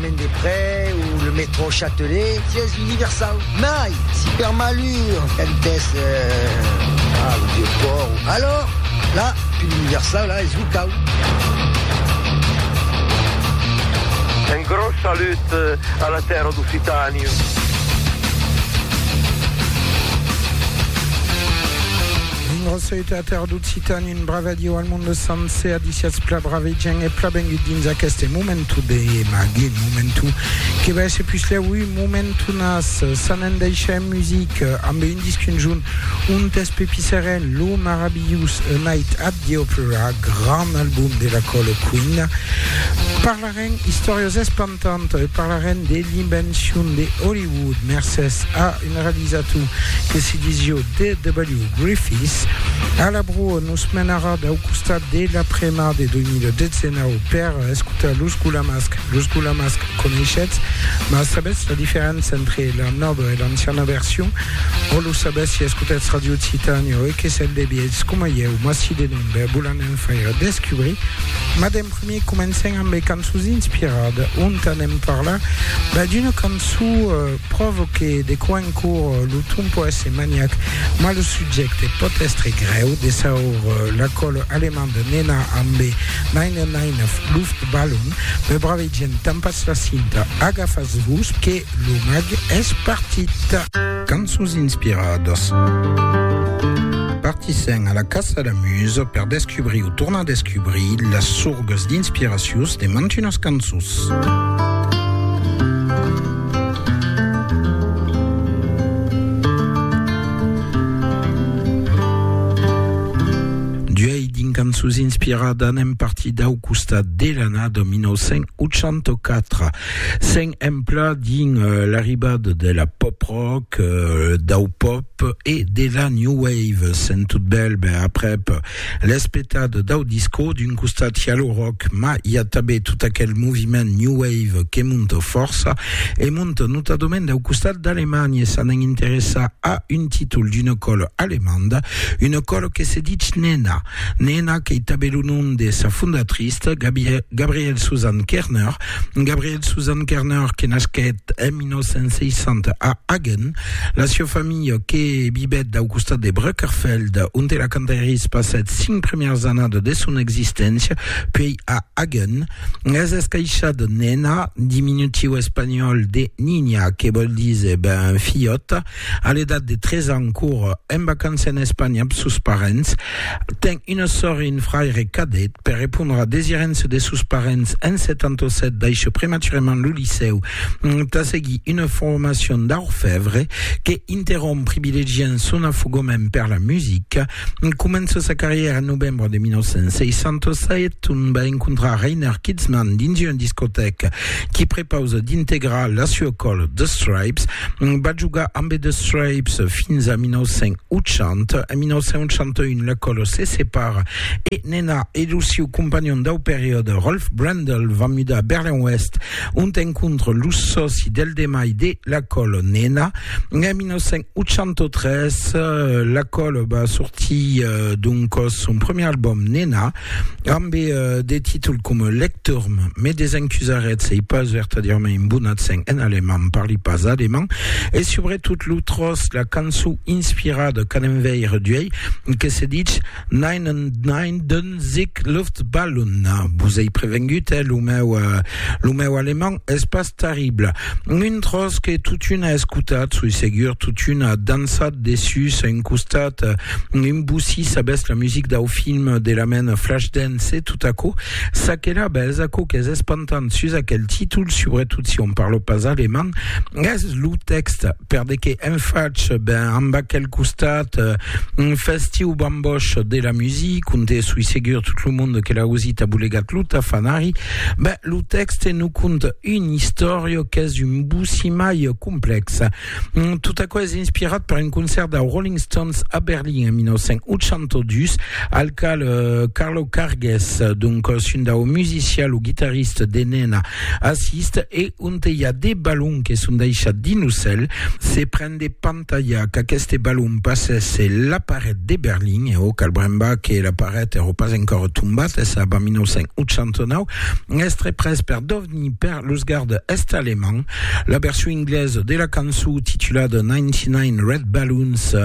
Chemin des Près o le métro Châtelet, sièis universau, mai si per malur quand es a lo Vieux Port o alors la pil universau la es locau. Un gros salut a la tèrra d'Occitània. Une recette à terre d'Occitanie, une brave adieu al monde sencer, adiciats pla brave gent et pla bengut dins aqueste momentu de magi, momentu que va esse puslèu un momentu nas, s'en en deixa en music, amb un disc conjunt, un test pepisserèn, lo marabilhous A Night at the Opera, grand album de la Colo Queen. Parlarem istòrias espantadas, Tant e parlarem de l'invencion de Hollywood mercés a un realizator que se disio D.W. Griffiths. A la broa nos menarà dau costat de la premar de 2019 per escotar Los Gulamasc. Los Gulamasc coneishetz, mas sabetz la diferença entre la nòva e l'anciana version? O lo sabetz si escotetz Radio Occitània o e que sètz de vièlhs coma ieu, mas si de non, ben vos l'anem faire descubrir. Mademr. Primièr comencem amb de cançons inspirada, ont anem parlar ben d'una cançó pròva que de quan cor lo ton pòt èsser maniac, mas lo subjècte pòt èstre grèu, de saur la còla alemanda Nena amb de Neine Neine Luftballon, me bravegem, tampatz la cinta, agafatz-vos que lo mag es partit. Cançons inspiradas. Partissèm a la caça la musa per descubrir o tornar descubrir las sorgas d'inspiracions de mantunas cançons. D'uèi dins Cançons inspiradas anem partir dau costat de l'annada 1984. S'en empla dins l'arribada de la pop rock, dau pop e de la new wave. Sent tot bèl, ben aprèp l'es petat dau disco, d'un costat i a lo rock, mas i a tanben tot aquel moviment new wave que monta fòrça, e monta notadament dau costat d'Alemanha, e s'anen interessar a un títol d'una còla alemanda, una còla que se ditz Nena. Nena qu'ei tanben lo nom de sa fondatrista, Gabrielle Susanne Kerner, Gabriel Susan Kerner, que nasquèt en 1960 a Hagen, la sieu familha que vivèt dau costat de Brückerfeld, onte la Cantaeris passèt cinc premièrs annadas de son existéncia, puèi a Hagen, es escaishada Nena, diminutiu espanhòl de Niña, que vòl díser ben filhòta, A l'edat de 3 ans, cour en vacança en Espanha amb sos parents, ten una sòr e un fraire cadet. Per repondre a desirença de sos parents, en 77 daishè prematurament lo licèu tà seguir una formacion d'orfèvre que interromp privilegiant son afogament per la musica. Comença sa carrièra en novembre de 1967, ont va encontrar Reiner Kitzman dins una discotèca qui prepausa d'integrar la sua còla The Stripes. Va jogar ambe The Stripes fins a 1980. En 1981 la còla se separa e Nena e lo siu companhon dau periòde Rolf Brendel van mudar a Berlin-Oèst ont encontra lo sòci del demai de la còla Nena. En 1981 83, La Colle va sortir d'un còs son premier album Nena, ambe de títol coma Lecturm, mais des encusarets ei pas vertadièrament un bon accent en alemand, parli pas alemand, e subretot lo tròç, la cançon inspirada qu'an enveire d'uei, que se ditz Nein und Nein, Sic Luftballon, vos ei prevengut, eh, lo meu, lo meu alemand es pas terrible. Un tros que totuna escotat, soi segur, totuna dansat dessus un costat, un bussi sabès la music dau film de la mena Flashdance e tot aquò, ça que la bes, aquò qu'es espantant sus aquel títol, subretot si on parlo pas alemand, es lo tèxte. per de que en fach ben amb aquel costat un festiu bamboch de la music onde soi segur tot lo monde que l'a ausit a bolegat lo tafanari ben lo texte nous conte une història qu'es un boussi mai complex mm, tot aquò es inspirat per un concert de Rolling Stones a Berlin en 1982 al cal euh, Carlo Cargues donc un dau musician lo guitarrista de Nena assiste e Onte i a de balons que son daishats dins lo cèl, se pren de pantalhar qu'aqueste balon passèsse la paret de Berlin, e o cal brembar que la paret èro pas encòra tombat, es ab a 1989, es tre pres per dovnir per los gardes est-alemands. La version inglesa de la cançó titulada 99 Red Balloons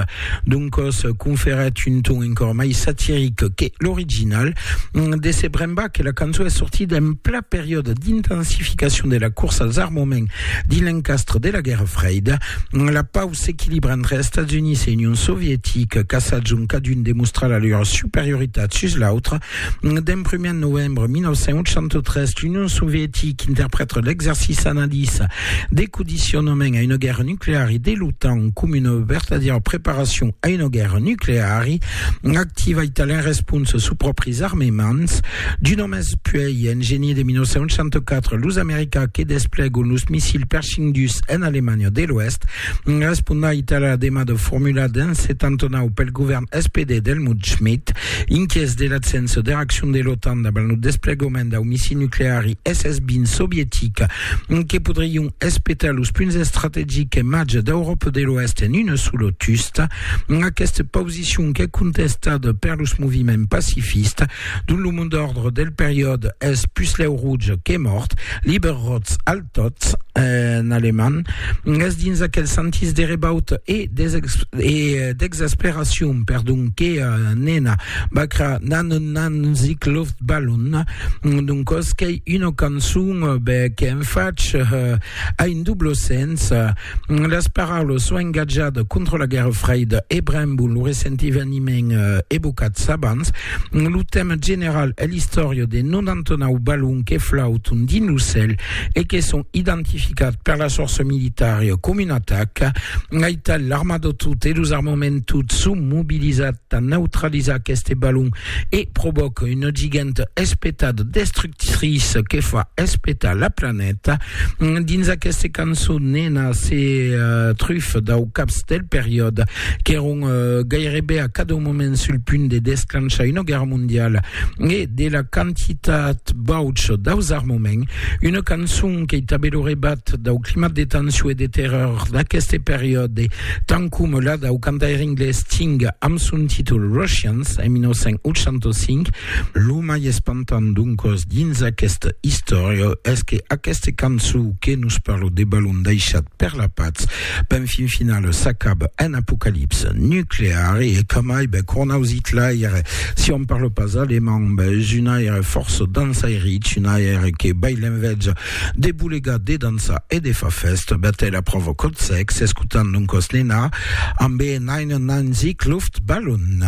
d'un còs conferèt un ton encòra mai satiric que l'original. De se brembar que la cançó es sortida en periòde d'intensificacion de la corsa als armaments dins l'encastre de la Guèrra Freida, la pau s'equilibra entre Estats Units e Union Sovietica, caçats ont cadun demostra la lor superioritat sus l'autre. D'en primièr novembre 1983, l'Union Sovietica interprèta l'exercici analiza de condicionament a una guèrra nucleari de l'OTAN coma una vertadièra preparacion a una guèrra nucleari, Activa italien responsa sus pròpris armements d'un òmes puèi en genier de 1964 los americans que desplegon los missils Pershing dus en Alemanha de l'Oèst responda Itàlia la demada formulada en 79 pel govèrn SPD d'Helmut Schmidt inquièts de l'absença de reaccion de l'OTAN davant lo desplegament dau missil nucleari SS-20 sovietic que podrion espetar los punts estrategics e màger d'Euròpa de l'Oèst en una sola tusta Aquesta posicion qu'es contestada per los moviments pacifistes, dont lo mot d'òrdre del periòde es puslèu rouj que mòrt, lieber rotz al totz en alemand, es dins aquel sentís de rebauta e d'exasperacion, perdon, que Nena Bacra nan nan sich Luftballon, d'un còs qu'ei una cançon, ben, qu'en fach a un doble sens, Las paraulas s'o engatjat contra la Guèrra Freida e brembon lo recent eveniment evocats abans, lo tèma general es l'istòria de 99 balons que flauton dins lo cèl e que son identificats per las fòrças militaria coma una ataca. Aital, l'armada tot e los armaments tot son mobilizats tà neutralizar aqueste balon e provoca una giganta espetada destructiva tris que fa espetar la planeta dins aquesta cançon nena se uh, truf dau caps del periòde qu'èron uh, gairebe a cada moment sul punt de desclanchar una guerra mondiala e de la quantitat bauch daus armaments una cançon que tabé lo rebat dau climat de tension e de terror d'aqueste periòde tant com la dau cantaire inglés Sting amb son títol Russians en 1985 Lo mai espantant doncòs dins aquesta istòria es que aquesta cançon que nos parla de balon daishat per la patz ben fin final s'acaba en apocalipsa nuclear e que mai ben cornaus Hitlaire si on parla pas alemand ben es un aire força dansairich un aire que bai l'enveja de bolegar de dansar e de fa festa ben te la prova cot sex escutant doncòs Nena ambe Nein Nein Sieg Luftballon